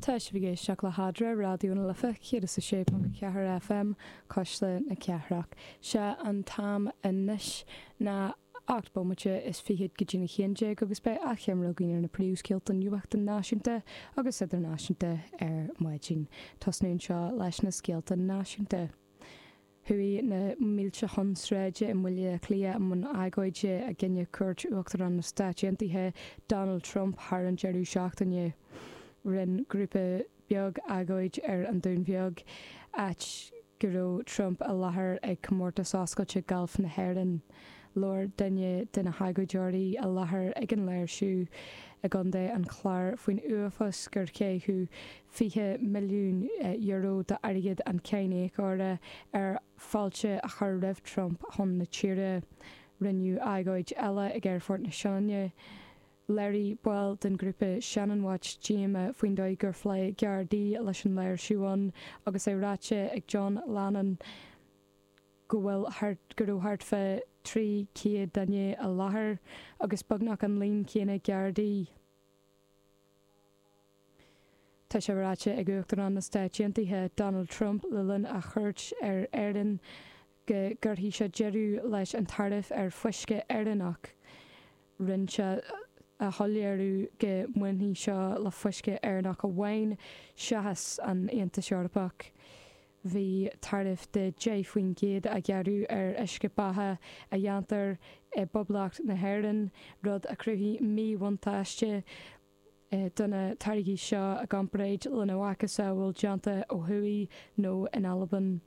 Tá sibh ag éisteacht le hAdhmhaidin Raidió na Life 106.4 FM, Cuisle na Cathrach. Sé an t-am anois ná ocht bomaite is fichead go dtí a haon déag agus beidh achoimre againn ar na príomhscéalta nuachta náisiúnta agus idirnáisiúnta ar maidin. Tosnóimid anseo leis na scéalta náisiúnta. Chuaigh na mílte chun sráide i mBaile Átha Cliath i mbun agóide i gcoinne cuairt Uachtarán na Stáit Aontaithe, Donald Trump thar an deireadh seachtaine. Rinne grúpa beag agóid ar an Dún Bheag, áit go raibh Trump i láthair ag Comórtas Oscailte Gailf na hÉireann. Labhair duine de na hagóideoirí i láthair ag an léirsiú i gContae an Chláir faoin uafás gur caitheadh €20 milliún d'airgead an cháiníocóra ar fáilte a chur roimh Trump chun na tíre. Rinneadh agóid eile ag Aerfort na Sionainne. Léirigh baill den ghrúpa Shannon Watch díoma faoin dóigh gur phléigh Gardaí leis an léirsiú ann agus é ráite ag John Lannon go bhfuil go raibh thart fá 300 duine i láthair agus beagnach an líon céanna Gardaí. Tá sé ráite ag Uachtarán na Stáit Aontaithe Donald Trump le linn a chuairt ar Éirinn go gcuirfidh sé deireadh leis an taraif ar uisce Éireannach. Rinn sé a shoiléiriú go mbainfidh seo le huisce Éireannach amháin seachas an Aontas Eorpach. Bhí taraif de 10 faoin gcéad á ghearradh ar uisce beatha a dhéantar i bPoblacht na hÉireann, rud a chruthaigh míbhuntáiste, do na táirgí seo i gcomparáid lena macasamhail déanta ó thuaidh nó in Albain.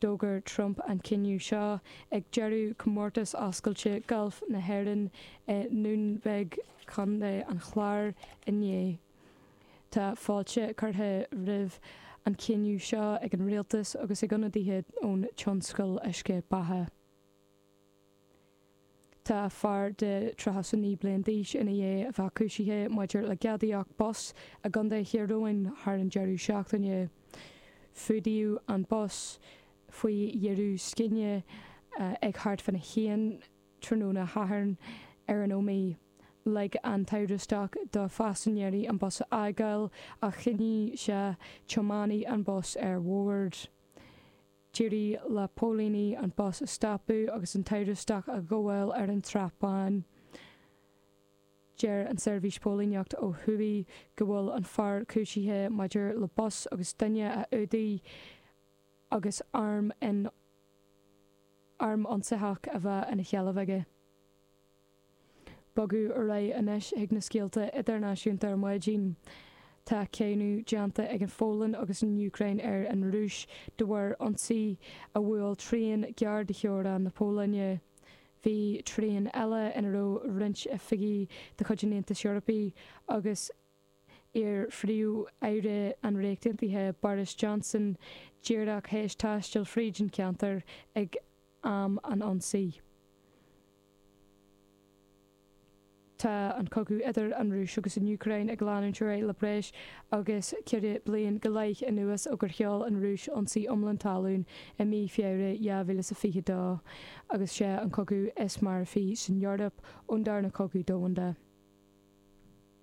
D'fhógair Trump an cinneadh seo ag deireadh Chomórtas Oscailte Gailf na hÉireann i nDún Bheag, Co. an Chláir inné. Tá fáilte curtha roimh an chinneadh seo ag an Rialtas agus ag ionadaithe ón tionscal uisce beatha. Tá fear de thríocha a naoi bliain d'aois ina dhiaidh a bheith cúisithe maidir le gadaíocht bus i gContae Thír Eoghain thar an deireadh seachtaine. Fuadaíodh an bus faoi bhior scine ag thart fána haon tráthnóna Sathairn ar an Ómaigh. Lig an t-amhrastach do phaisinéirí an bus a fhágáil ach choinnigh sé tiománaí an bhus ar bhord. D'éirigh le póilíní an bus a stopadh agus an t-amhrastach a ghabháil ar an tSrath Bán. Deir an tSeirbhís Póilíneachta ó thuaidh go bhfuil an fear cúisithe maidir le bus agus duine a fhuadach agus arm in arm ionsaitheach a bheith ina sheilbh aige. Bogadh ar aghaidh anois chuig na scéalta idirnáisiúnta ar maidin. Tá cáineadh déanta ag an Phólainn agus an Úcráin ar an Rúis de bharr ionsaí a bhuail traein gearr de theorainn na Pólainne. Bhí traein eile ina raibh roinnt oifigí de chuid an Aontais Eorpaigh agus. iar-phríomh-aire an Ríocht Aontaithe Boris Johnson díreach théis taisteal fríd an cheantar ag am an ionsaí. Tá an cogadh idir an Rúis agus an Úcráin ag leanúint ar aghaidh le breis agus ceithre bliain go leith anuas ó gur sheol an Rúis ionsaí iomlán talún i mí Feabhra 2022 agus sé an cogadh is marfaí san Eoraip ón darna cogadh domhanda.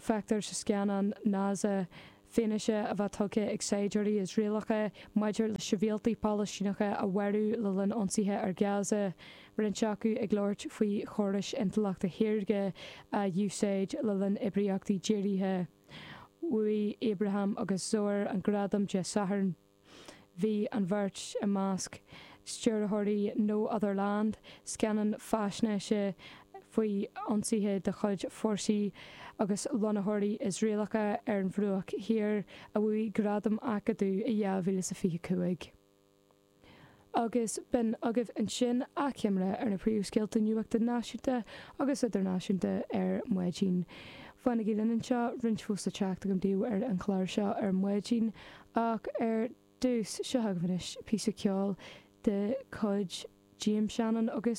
Feictear sa scannán Naza fianaise á bheith tugtha ag saighdiúirí Iosraelacha maidir le sibhialtaigh Palaistíneacha a mharú le linn ionsaithe ar Gaza, roinnt acu ag labhairt faoi chórais intleachta shaorga a úsáid le linn oibríochtaí dírithe. Bhuaigh Abraham agus Szor an gradam Dé Sathairn. Bhí an bheirt i measc stiúrthóirí No Other Land, scannán faisnéise faoi ionsaithe de chuid fórsaí agus lonnaitheoirí Iosraelacha ar an Bhruach Thiar, a bhuaigh Gradam Acadaimh i 2025. Agus b'in agaibh ansin achoimre ar na príomhscéalta nuachta náisiúnta agus idirnáisiúnta ar maidin. Fanaigí linn anseo, roinnt fós le teacht agam daoibh ar an chlár seo ar maidin, ach ar dtús, seo chugaibh anois píosa ceoil de chuid James Shannon agus.